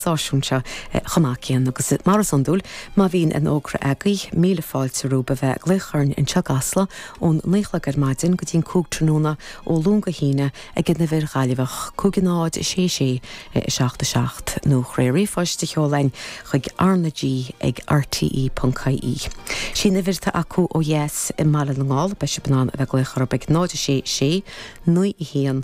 seisiún seo chomh maith céanna agus, mar is iondúil, má bhíonn aon fhógra agaibh, míle fáilte romhaibh a bheith ag glaoch orainn anseo i gCasla ón naoi chlog ar maidin go dtí an cúig tráthnóna ó Luan go hAoine ag an uimhir Ghaillimheach 51066 77 nó is féidir ríomhphost a sheoladh ann chuig rnag ag rte.ie. Sí'n uimhir atá acu ó dheas i mBaile na nGall. Beidh sibh in ann a bheith ag glaoch orthu ag 066 91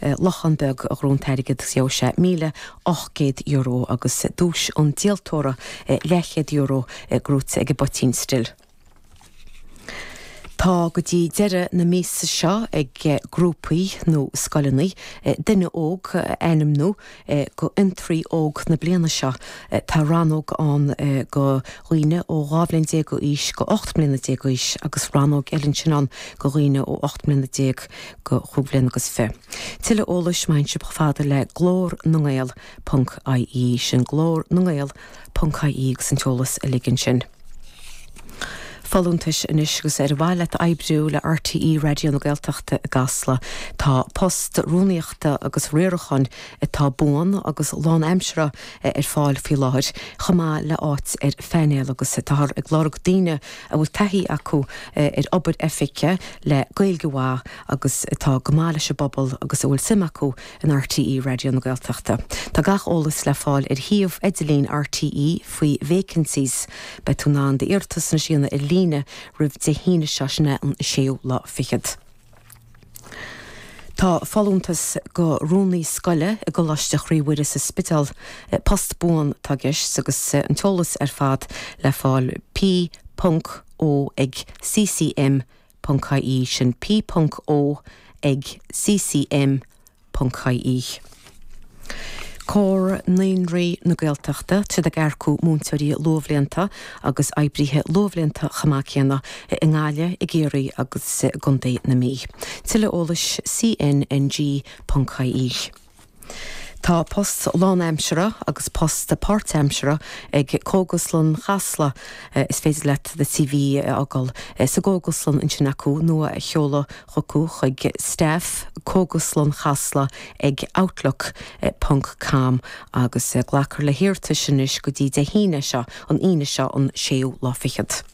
lochán beag a ghnóthaigh an t-airgead gheobhaidh sé míle ocht gcéad euro agus duais an díoltóra leathchéad euro gnóthaithe ag an bpoitín stil. Tá go dtí deireadh na míosa seo ag grúpaí nó scoileanna duine óg a ainmniú go fhiontraí óg na bliana seo. Tá rannóg ann go dhaoine ó 12 bhliain d'aois go 18 mbliana d'aois agus rannóg eile ansin ann go dhaoine ó 18 mbliana go chúig bhliain agus fiche. Tuilleadh eolais, téigí chomh fada le glór na ngael ponc ie, sin Glór na nGael Ponc-IE agus an t-eolas uilig ansin. Folúntais Anois agus Ar mhaith leat oibriú le RTÉ Raidió na Gaeltachta i gCasla? Tá post rúnaíochta agus riaracháin atá buan agus lánaimseartha ar fáil faoi láthair, chomh maith le háit ar phainéal agus táthar ag lorg daoine a bhfuil taithí acu ar obair oifige le Gaeilge mhaith agus atá go maith leis an bpobal agus a bhfuil suim acu in RTÉ Raidió na Gaeltachta. Tá gach eolas le fáil ar shuíomh idirlín RTÉ faoi vacancies. Beidh tú in ann d'iarratas ansin a dhéanamh ar líne roimh Dé hAoine seo, sin é an 6ú lá fichead. Tá folúntas go rúnaí scoile i gColáiste Chroí Mhuire sa Spidéal. Post buan atá i gceist agus an t-eolas ar fad le fáil, P. Ponc O ag, CCM. Ponc-IE sin P. Ponc O ag CCM. Ponc-IE. Comhar Naíonraí na Gaeltachta, tá siad ag earcú múinteoirí luathbhlianta agus oibrithe luathbhlianta chomh maith céanna i nGaillimh, i gCiarraí agus i gContae na Mí. Tuilleadh eolais CNNG. Ponc-IE. Tá post lánaimseartha agus post páirtaimseartha ag cógaslann Chasla. Is féidir leat do CV a fhágáil sa gcógaslann ansin acu nó a sheoladh chucu chuig staff, Cógaslann Chasla ag outlook ponc com agus glacfar le hiarratais anois go dtí Dé hAoine seo, an Aoine seo, an séú lá fichead.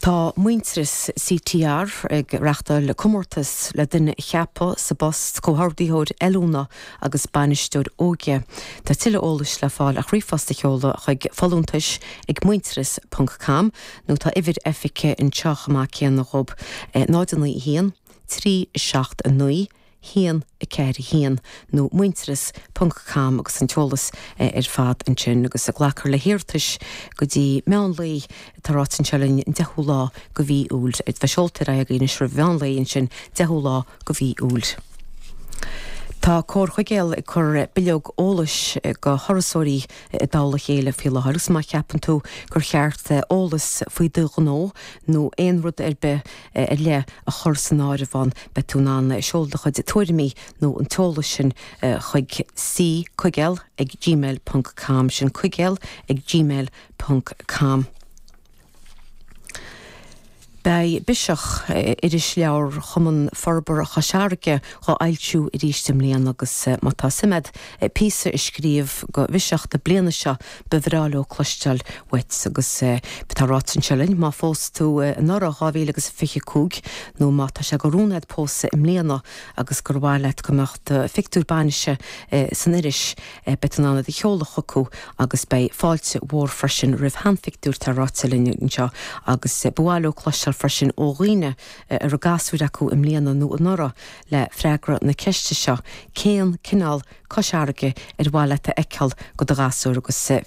Tá Muintearas CTR ag reáchtáil comórtas le duine a cheapadh sa bpost Comhordaitheoir Oiliúna agus Bainisteoir Óige. Tá tuilleadh eolais le fáil ach ríomhphost a sheoladh chuig, folúntais ag muintearas ponc com, nó tá uimhir oifige anseo chomh maith céanna dhób, 091 379 422. 1, 4, 1, nó Muintearas, ponc com agus an t-eolas ar fad ansin agus ag glacadh le hiarratais go dtí meán lae. Tá ráite anseo linn an deichiú lá de mhí Iúil. A bheith seolta ar aghaidh agaibh anois roimh mheán lae ansin, deichiú lá de mhí Iúil. Tá Comhar Chuigéal ag cur bileog eolais go thurasóirí i dtoll a chéile faoi láthair agus má cheapann tú gur cheart eolas faoi do ghnó nó aon rud ar bith, ar leith a chur san áireamh ann, beidh tú in ann do chuid tuairimí nó an t-eolas sin chuig C coigeal ag gmail ponc com, sin coigeal ag gmail ponc com. Beidh Biseach, irisleabhar Chumann Forbartha Chois Fharraige, dhá fhoilsiú arís i mbliana agus má tá suim agat píosa a scríobh go Bhiseach na bliana seo, Ba bhreá leo cloisteáil uait agus tá ráite anseo linn, má phós tú anuraidh, 2025, nó má tá sé de rún agat pósadh i mbliana agus gur mhaith leat go mbeadh do phictiúr bainise san iris, beidh tú in ann iad a sheoladh chucu agus beidh fáilte mhór freisin roimh sheanphictiúir, tá ráite linn anseo. Agus ba mhaith leo cloisteáil freisin ó dhaoine a raibh gasúir acu i mbliana nó anuraidh, le freagra na ceiste seo, cén cineál Cois Fharraige ar mhaith leat a fheiceáil do do ghasúr agus.